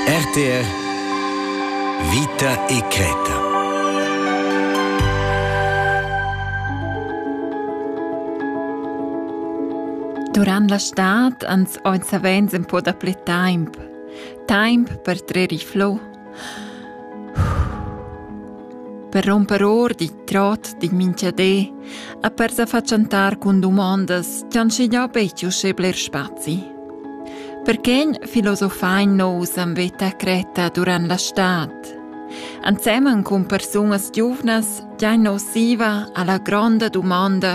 RTR Vita e creta. Durant la stad ans oi savens in po da ple taimp. Taimp per trer i flo Per romper or dit trot din minchadé e per sa fatschentar cun dumondas ch'han schignà betg uschè bler spazi. Perquegn filosofain nous am veta cretta durant la stad. Ensemen cun persunas giuvnas giain nus siva alla gronda dumanda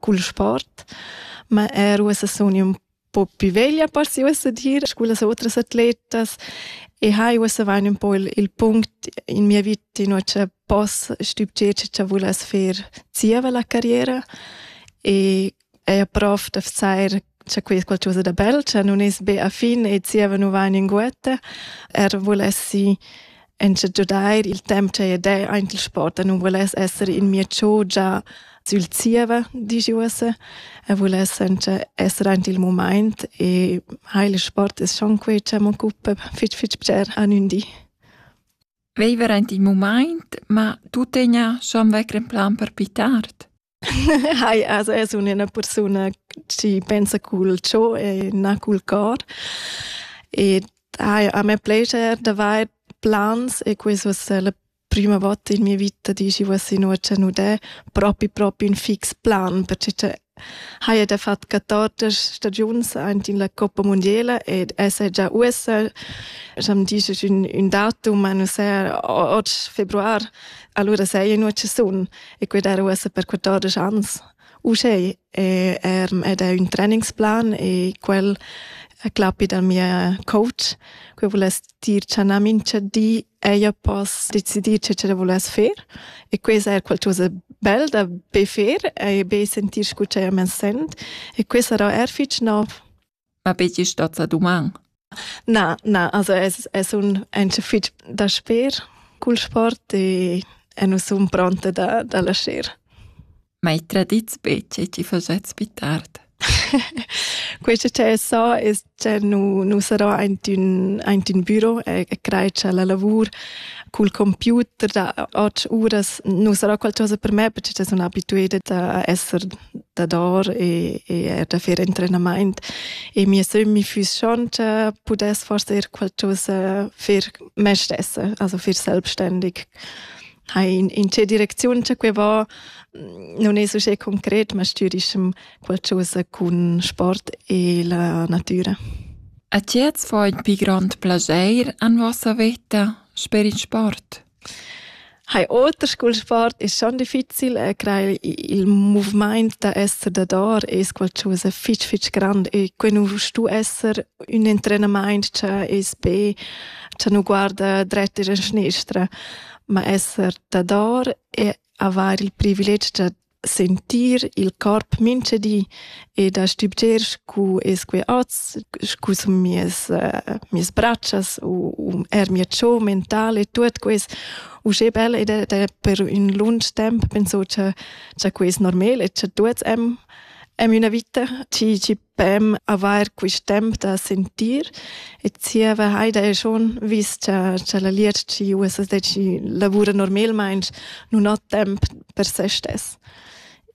cul sport, ma er uossa sun ün po più veglia parsi uossa dir scu las otras atletas e hai uossa vain ün po il, il punct in mia vita in cha poss stübgier cha vuless fer zieva la carriera e eir prof da vesair C'è quei qualcosa da bel, che non es be a fin e zieva nu va in inguetta, er volessi enche giudair il temp che ed è aint il sport e non voless essere in mia chogia sül zieva, dici uossa, e voless enche essere aint il moment e ha il sport es schon quei che m'occupa fitch fitch bger an ün di. Veiver aint il moment, ma tu tegna schon vecren plan per pitar? Hai, also es üna persuna chi pensa cul cho e na cul cor. Ed hai, a me plascher d'avair plans e quest voss sia la prüma vota in mia vita di chi voss inuocha nudè propi propi ün fix plan, perche cha haja da fat 14 stagiuns aint in la Coppa Mundiela ed esa già uossa, scha'm disch ün ün datum, ma nu saja oggi februar, alura saja inuocha sun. e quei dar ussa per 14 ans. Uschè è, er, ed è un trainingsplan e quel a clappi dal mia coach, che voless dir cha na mincha di ella poss decidir che ce voless fer e questa è qualcosa bel da be fer e be sentir scu ch'ella men sent e questa sarà er fich nov. ma be gist ozza duman. Na, na, also es, es un encha fich da sper cul sport e, e nu sun pronta da, da lascher. Ma i tradits be che ti facets più tard? Questo che so es che nu, nu sarò aint ün, aint ün büro e, e crei cha la lavur cul computer da 8 uras nu sarà qualcosa per me perché sun abitueda a esser dador e, e er da fer entrenamaint e mia sömmi füss schonta pudess forse er qualcosa fer me stessa, also fer selbstständig. Hai in, in tge direcziun che que va, non es uschè concret, ma stürischem qualcosa cun sport e la natura. A ti jetzt vor il più grande piacere en vossa vita per il sport? Hai oter scu'l sport es schon difficil e crei il muvimaint da esser dador es qualchosa fich fich grand e que nu stu esser ün entrenamaint cha es be cha nu guarda dret ir in schnestra, ma esser dador e avair il privilegi da sentir il corp mintgadi e da stübgier scu es que hoz, scu sun mieas mieas bratschas u u eir mia cho mentala e tuot quist. Uschè bel ed ed per ün lunch temp penso cha cha que es normal e cha tuots am am üna vita, chi chi beim avair quist temp da sentir e zieva Heida e schon vis cha cha la Lietschi USSDC lavura normalmaing nun ho temp per se stess.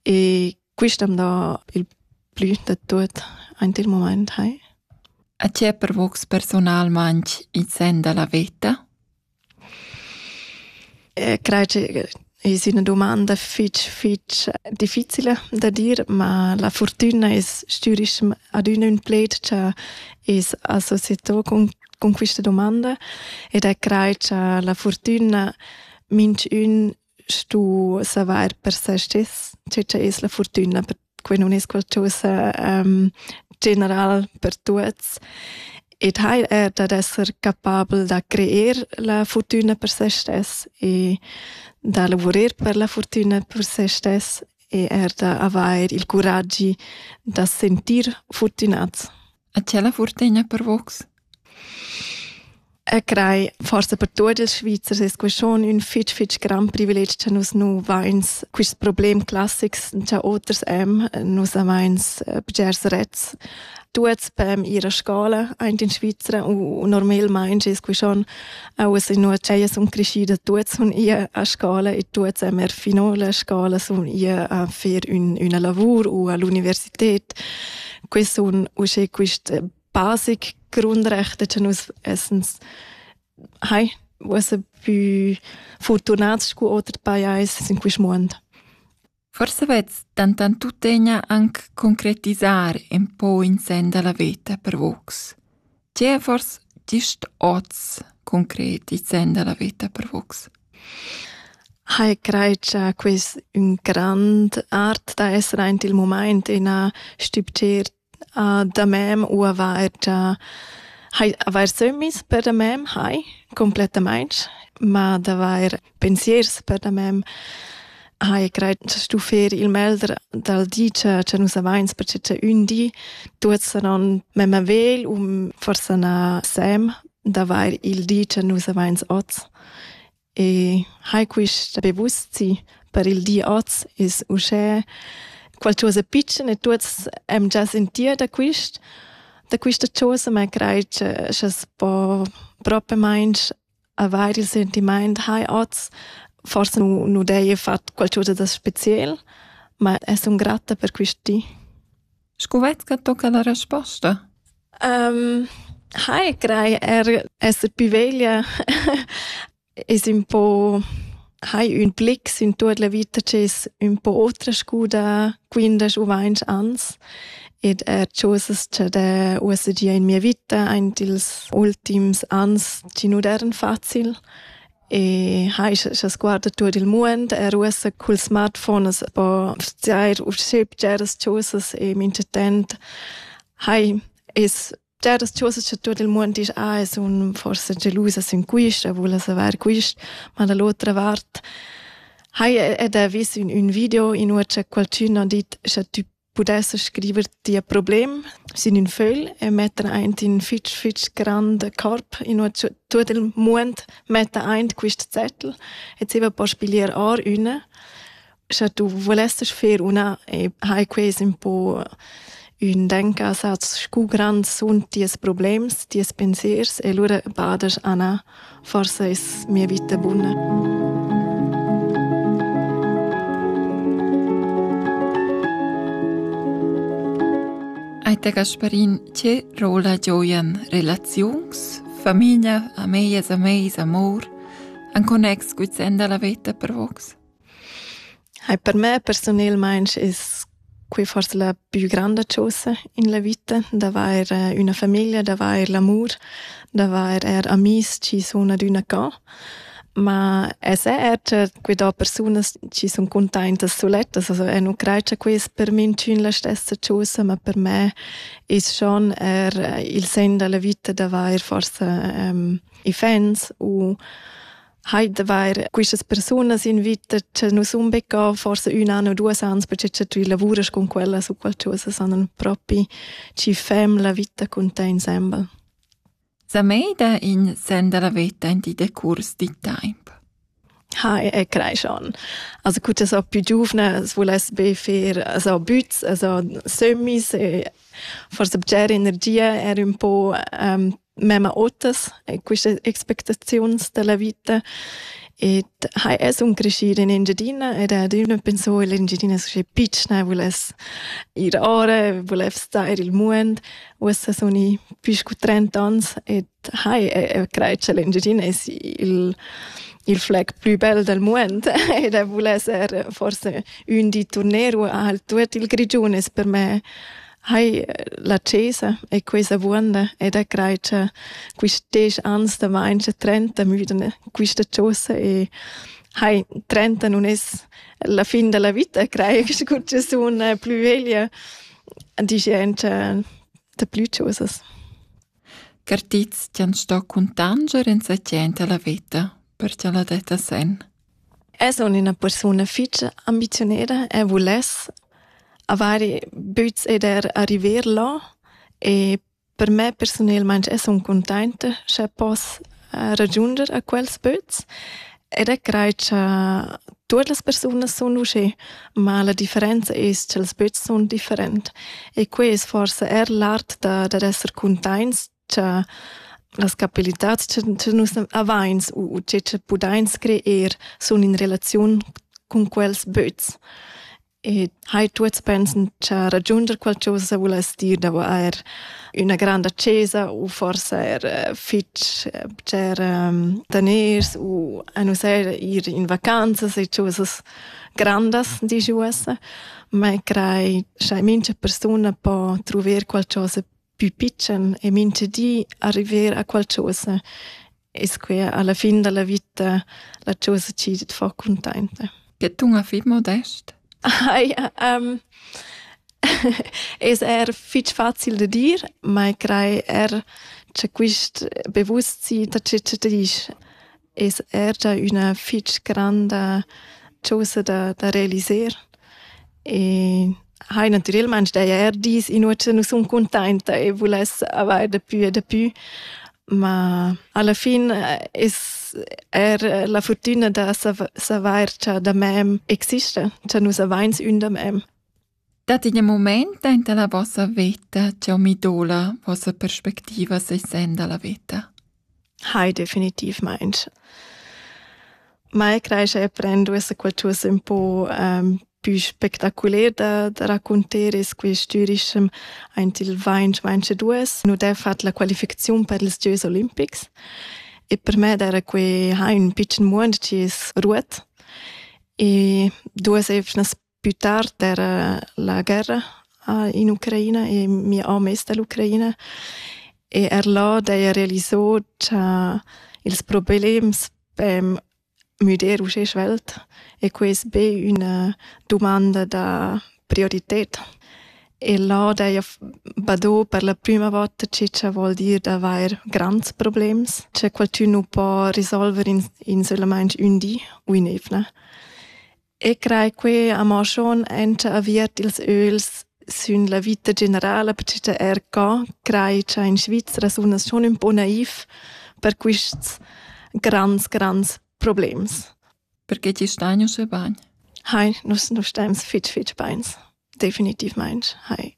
E quist am dà il plü da tuot aint il mumaint, hai. A tie pervocs personalmaing in sen da la veta? Crei che es üna dumanda fich fich difficila da dir, ma la furtüna es stürischem adüna ün pled cha es associeto cun cun quista dumanda ed e crei cha la furtüna minchün stu savair per se stis, tge che es la fortuna per que nun es qualchosa um, general per tuots. Ed hail er dad esser capabel da creer la fortuna per se stess e da lavurer per la fortuna per se stess e er da avair il curaggi da sentir fortunats. A ti la fortegna per vos? E crei forse per tuot ils Svizzers es que schon ün fich fich grand privilegi cha nus nu vains quist problem classics cha oters am. Nus avains eh, bgers rets. Tuots pem ir a scola aint in Svizra u normalmaing es que schon auas inua ch'ellas sun creschüdas tuots sun ir a scola e tuots am er fino la scola sun ir a fer ün üna lavur u a l'università. dort. Quest un usche quist basic Grundrechte che nus essens hai was a più fortunați cu otri pajais în quest moment. Forse vez tantan tuttegna anc concretizar en po in sen da la veta per vox. Tievers gist oz concret il sen da la veta per vus? Hai crei cha quist ün grand art da esser aint il mumaint ina stübgir da mem u avair già hai avair sömmis per da mem hai complettamaing, ma d'avair pensiers per da mem hai grad stu fer il melder dal di cha cha nus avains per che ün di tuot sanon mem avel u forsa na sem d'avair il di cha nus avains hoz. E hai quist be buzi per il di hoz es uschè qualchosa pitschen e tuots am già sentir da quist da quista chosa, ma craj cha cha's po propamaing Avair il sentimaint hai hoz forsa nu nu d'heja fat qualchösa da speciel, ma es sun gratta per quist di. Scu vai's cha tocca la resposta? Hai craj eir esser pi veglia es ün po hai ün blick sin tuot la vita chi's ün po otra scuda quindesch u vainch ans ed er chosas cha d'he uossa gia in mia vita aint ils ultims ans chi nu d'eiran facil e hai scha sguarda tuot il muond er uossa cul smartphone as po vzair usché bgeras chosas e minchatant hai es Dad as tuossa cha tuot il muond disch ah, eu sun forsa gelusa sün quist, eu voul savair quist, ma da l'otra vart haja ed ha vis ün, ün video in ua cha qualchün ha dit cha tü pudesse scriver tia problem sin ün fögl e metter aint in fitch fitch grand corp in ua tuot il muond metta aint quist zettel e zieva po spiglier or üna sche tu volesses fer una e hai ques un po un denka saz scu grand sun ties problems, ties pensiers e lura badas Anna, forse es mia vita buna. Aita Gasparin, che rola gioian relaziuns, famiglia, amejas, ameis, amor, an connex guizenda la veta per vox? Hai per me persunelmaing es quai forsa la pü granda chosa in la vita, d'avair üna famiglia, d'avair l'amur, d'avair eir amis chi sun adüna cò. Ma esser eir cha que do persunas chi sun cuntaintas sulettas, also eu nu crai cha quai es per minchün la stessa chosa, ma per me es schon eir il sen da la vita d'avair forsa i fans u Heute wäre quistas persunas invita che nus unbecca forse un an o duas ans perché che tu lavuras con quella su qualcosa sanan propi ci fem la vita con te insemble. Sa mei da in senda la veta in di decurs di temp. Ha e crei schon. Also gut so più giovane es voless be fer so büts, also semis e forse bger energia er un po um, memma otas e quistas expectaziuns della vita ed ha es un crescir in Engiadina ed adüna penso illa Engiadina schi pitschna vuless ir ora, vuless star i'l muond. Uossa sun i pü scu trenta ans ed hai e crai cha l'Engiadina es il il fleg plü bel dal muond ed vuless er forse ün di turneru al Tour dil Grigiun es per me Hai la cesa e questa vuonda e da crai cha quist desch ans da main cha trenta müdan quista chosa e hai trenta nun es la fin da la vita, crai che scu sun plü veglia, disch auncha daplü chosas. Cartits ti han sto cuntanger in sa tschenta la vita, per cha la detta sen. Es aunc ina persuna fetg ambiziuneda e vuless haver buc ed er arriver là e per me persunalmein es aunc cuntainta scha poss ragiunder a quels böts ed e craj cha tuot las persunas sun uschè, ma la differenza es cha'ls böts sun different e quai es forsa eir l'art da dad esser cuntaints cha las capabilitats cha nus avains u che cha pudains creer sun in relaziun cun quels böts. E hai tuots pensen cha ragiunder qualchosa vuless dir davo eir üna granda chesa u forsa eir eh, fich eh, bger ehm, daners u a nus eir ir in vacanzas e chosas grandas, disch uossa, ma crai cha mincha persuna po truver qualchosa pü pitschen e mincha di arriver a qualchosa. E squia alla fin dalla vita la chosa chi tet fa cuntainta. Che tunga fit modest? Aia, um, es er fich facil da dir, ma crai er cha quist bewusstsein da che che disch. es er gia üna fich granda chosa da, da realiser e hai natürelmaing daja er dis inua cha nu sun cuntainta e vuless avair dapü e dapü, ma alla fin eh, es er la furtüna da savair cha da mem exista, cha nus avains ün da mem. Dat in mument aint la vossa veta ch'eu mi doula vossa perspectiva sesend da la veta? Hai, definitivmaing. Mai creischa e prend duessa qualchosa ün po um, pü spectaculer da, da raccunter e squistürischem aint il vainch vainch e duos. Nu d'he fat la qualificaziun per ils gieus olimpics e per me d'era que ha ün pitschen muond chi es ruot e duos evnas Più tard era la guerra in Ucraina e mia om es da l'Ucraina e er là d'eira realisà cha ils problems pem müder uschè svelt e que es be üna dumanda da priorited. E là d'eira badò per la prüma vota che cha vuol dir d'avair grands problems, cha qualchün nu po risolver insülamaing ün di u ün'eivna. E crei quei amo schon enta aviert ils öls sün la vita generala, perche er ca crei cha in Svizra sun as schon ün po naiv per quists grands, grands problems. Perché ti stain uschè bain? Hai, nus, nus staims fitg, fitg bains. Definitivmaing hai.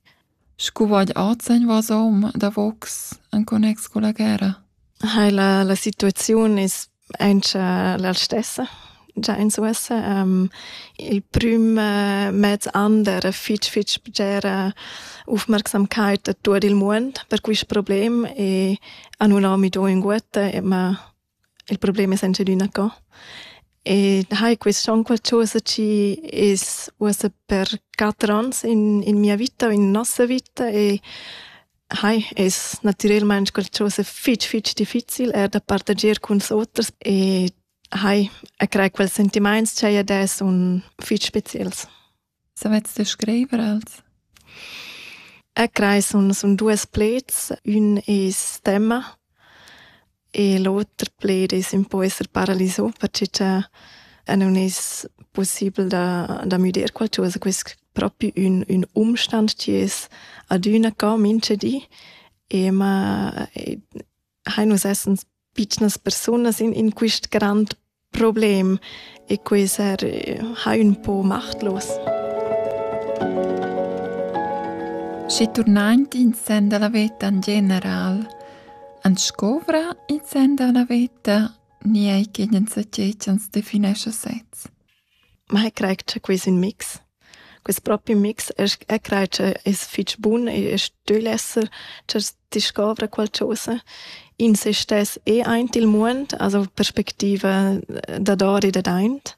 Scu vaid ozeñ vasom davocs in connex culla guerra? Hai la, la situaziun es auncha la stessa già in uossa. Um, il prüm uh, mez an d'eira fich fich bgera ufmarcsamkeit a tuot il muond per quist problem e a nun ho mi do ünguotta, ma Il problem es engiadina co. E hai quist on qualchosa chi es uossa per quatter ons in, in mia vita o in nossa vita e hai es natürelmaing qualchosa fich fich difficil eir da partager culs oters e hai a crai quels sentimaints cha i ad es un fich speciels. Savets ti scriver els? E crei sun sun duos pleds. Ün es temma e l'oter pled es ün po esser paralisà perche cha nun es pussibel da da müder qualchosa. Quist propi ün ün umstand chi es adüna co minchedi e ma e hain nus essens pitschnas persunas in, in quist grand problem e quei ser ha ün po machtlos. Schi turnant in sen dalla veta in general, an scovra in sen dalla veta ni ei che den saceits ans definescha sez. Ma eg craj cha quist ün mix. Quist propi mix esch eg craj cha es fich bun e e stögl esser cha discovra qualchosa. In se stess e aint il muond, also perspectiva dador e dadaint.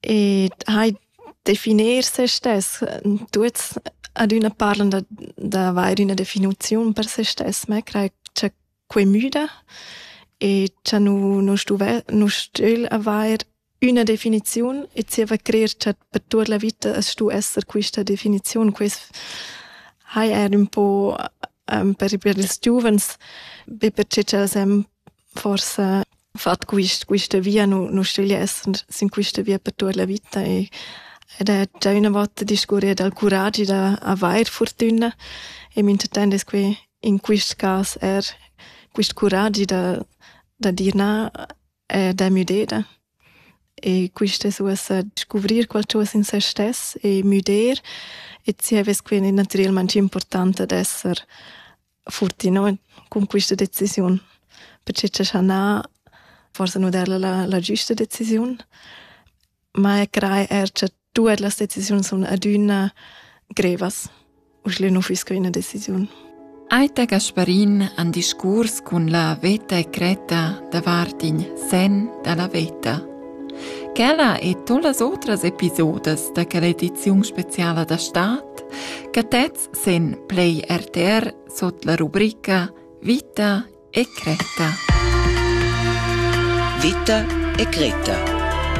Ed hai definir se stess. Tuots ad üna parlan da d'avair üna definiziun per se stess, ma eg craj cha quei müda e cha nu nu stuve nu stüel avair üna definiziun e zieva crer cha per tuot la vita as stu esser quista definiziun. Quist hai eir ün po per per ils giuvens, be perche cha'ls hem forsa fat quist, quista via, nu, nu sceglier esser sin quista via per tuot la vita e ed è già üna volta discurrì dal curagi da avair furtüna e minchatant es que in quist cas eir quist curagi da, da dir na e da müdeda. E quist es uossa scuvrir qualchosa in se stess e müder e zievas que naturalmaing important ad esser futti no cun quista decisiun perché cha schanà forsa nu der la, la giüsta decisiun ma e crei er cha tuot las decisiuns sun adüna grevas uschle nu füss que üna decisiun. Aita Gasparin han discurs cun la veta e creta davart in sen da la veta. Quella e todas otras episodes da quella ediziun speciala da Staat che tez podcasts sen play RTR sot la rubrica Vita e Creta. Vita e Creta